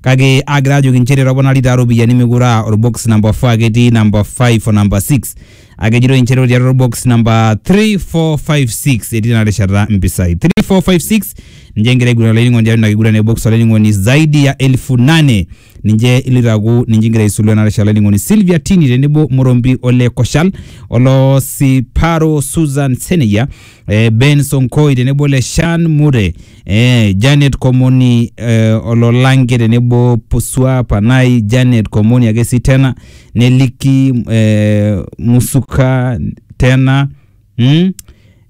kake agira ajoki nchere toponari taa iropiyiani mekure aa orbox namba 4 ake etii namba 5 o namba 6 ake ejitoi nchere ore tiatua orbox namba 3 4 5 6 etii tena rishata mpisai 3 4 5 6 ninche egira aiguran olainining'oni tiatua ina kiguran e box olainining'oni zaidi ya elfu nane ninche iloito aaku ninche igira aisulu ena rishata olainining'oni Sylvia Tini tenebo Morombi ole Koshal olo Siparo Susan Seneyia eh, Ben Sonkoi tenebo ole Shan Mure Eh, Janet Komoni eh, Ololange tenebo Pusua Panai, Janet Komoni ake si tena, neliki eh, Musuka tena mm?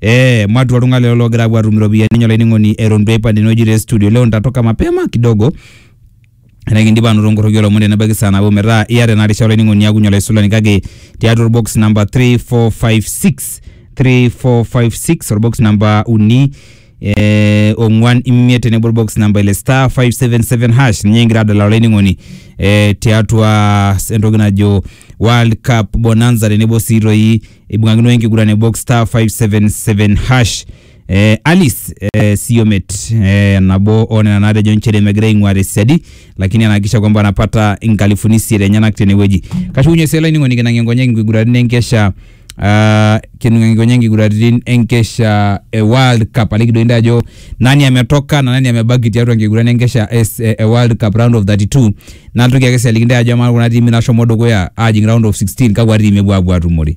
Eh, matua oltung'ani lelo loogira apuo atum iropiyiani enye olainining'oni eton duo aipang tenewueji te studio leo nitatoka mapema kidogo Etaa ekindipa anoto nkorroki olomon tenebaiki saa nabo metaa iyata ena risha olainining'oni niakunye olaisulani kake tiatua orbox number 3456 3456 orbox number uni eh, ong'uan imiet tenebo orbox number ile star 577 hash ninye kigira adala olainining'oni eh, tiatua entoki najo World Cup Bonanza tenebo sii toi ibung'akino enkiguran e box star 577 hash Eh, Alice eh, Siomet eh, nabo onena natejo nchere megira aing'ua tesiadi lakini anahakikisha kwamba anapata nkalifuni isiet enyenak tenewueji kashukunye sii olainining'oni kinang'ie nkonyek nkiguraritin enkesha ah, kinang'ie nkonyek nkiguraritin enkesha e World Cup aliki doi ntae ajo nani ametoka na nani amebaki tiatua nkiguran enkesha es- e e World Cup round of 32 natoki ake sii aliki ntae ajo amaa kuna tiimi nashomo dukuya ajing round of 16 kakwa tiimi epuo apuo atumore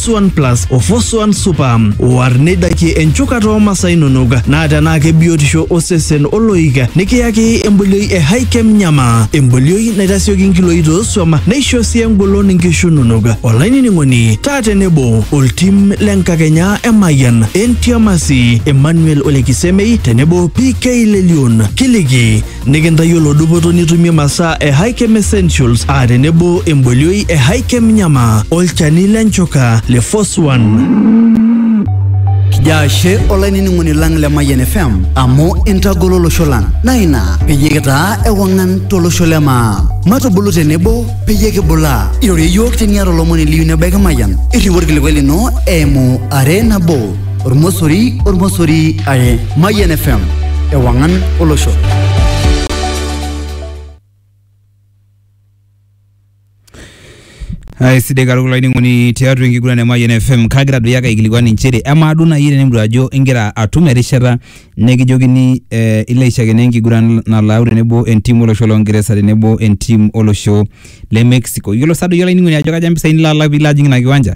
Suan Plus o Fosuan Super. War neidakie enchukata oo masaa inonok naa tenaa kebiotisho osesen oloik nikiyaki embolioi e Hikem Nyama. Embolioi naitasioki nkiloi toosuam neisho sii engolon inkishu inonok. Olainining'oni taa tenebo oltim le nkakenya e Mayian, Entiamasi, Emmanuel Olekisemei tenebo PK Lelion. Kiliki Nikintayiolo dupoto nitumie masaa e Hikem Essentials aa tenebo embolioi e Hikem Nyama olchani le nchoka le Force One. Jaashe olainining'oni lang le Mayian FM amu intagolo olosho lang naa ina peyie kitaa ewang'an tolosho le maa. Matubulu tenebo peyie kibulaa. Irorie iyiook teniata olomoni liyieu nebaiki Mayian. Irriu orkilikuai lino eimu are nabo. ormosori ormosori are mayian fm ewangan olosho aisidai katukul olainining'oni tiatua enkiguran e Mayian FM kagira doi ake aikilikuan inchere amaa duo naaji tenidol ajo ingira atum erishata nekijokini eh, ilo aishakeno enkiguran nalau tenebo entim olosho loo Ngeresa tenebo entim olosho le Mexico yiolo sa doi olainining'oni ajo kaja impisai nilo alak piilo ajing ina kiwanja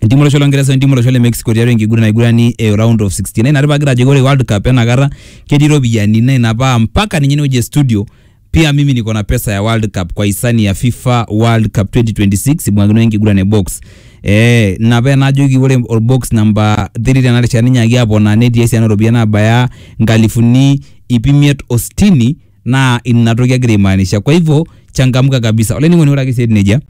Entimu olosho longeresa entimu olosho le Mexico tiatua enkiguran naigurani e round of 16 ina tipagira ajoki ore World Cup enakata ketii iropiyiani na ina paa mpaka ninye inewueji e studio pia mimi niko na pesa ya World Cup kwa hisani ya FIFA World Cup 2026 ibung'akino enkiguran e box eh ina paa enajoki ore orbox namba 3 tena rishata ninyaaki aponaa netii esiana ooropiyiani nabaya nkalifuni iip imiet o sitini naa ina toki agira aimaanisha kwa hivyo changamka kabisa olainining'oni ore ake sii etiu nejia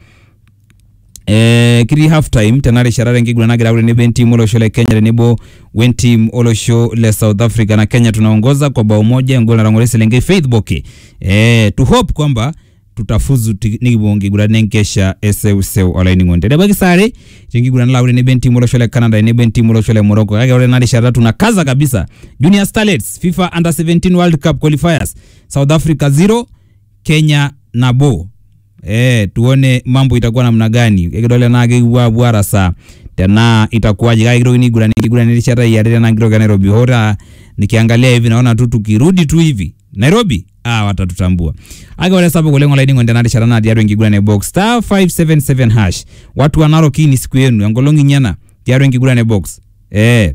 Eh, kitii half time tena rishata tenkiguran nagira aaku tenebo entim olosho le Kenya tenebo wentim olosho le South Africa na Kenya tunaongoza kwa bao moja engol natang'oro eselenkei Faith Boke eh, to hope kwamba tutafuzu ti- nikipuo nkiguran enkesha eseuseu olainining'oni tenebaiki saa are tenkiguran nalo aaku tenebo entim olosho le Canada tenebo entim olosho le Morocco kake ore ena rishata tunakaza kabisa Junior Starlets FIFA Under 17 World Cup qualifiers South Africa 0 Kenya nabo eh, tuone mambo itakuwa namna gani ekidol tenaa kekipuo apuo arasaa tenaa itakuwaje kake kitokini aiguran enkiguran erishata iare tenaa kitoki e Nairobi hoo taa nikiangalia hivi naona tu tukirudi tu hivi Nairobi ah, watatutambua ake ore sapuk oleng olainining'oni tena rishata naa tiatua enkiguran e box star 577 hash watu wa Narok hii ni siku yenu enkolong inyi ena tiatua enkiguran e box eh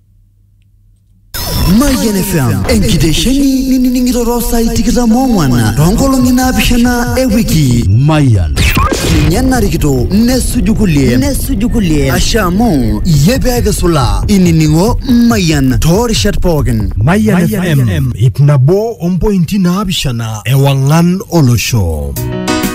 Mayian FM enkitesheni ninining'ito too saai tikitam oong'wan too nkolong'i naapishana e wiki. Mayian. Ninye narikito nesuju kulie nesuju kulie ashe amu iyie pee kisulaa inining'o Mayian too rishat pookin. Mayian FM ip nabo ompointi naapishana ewang'an olosho.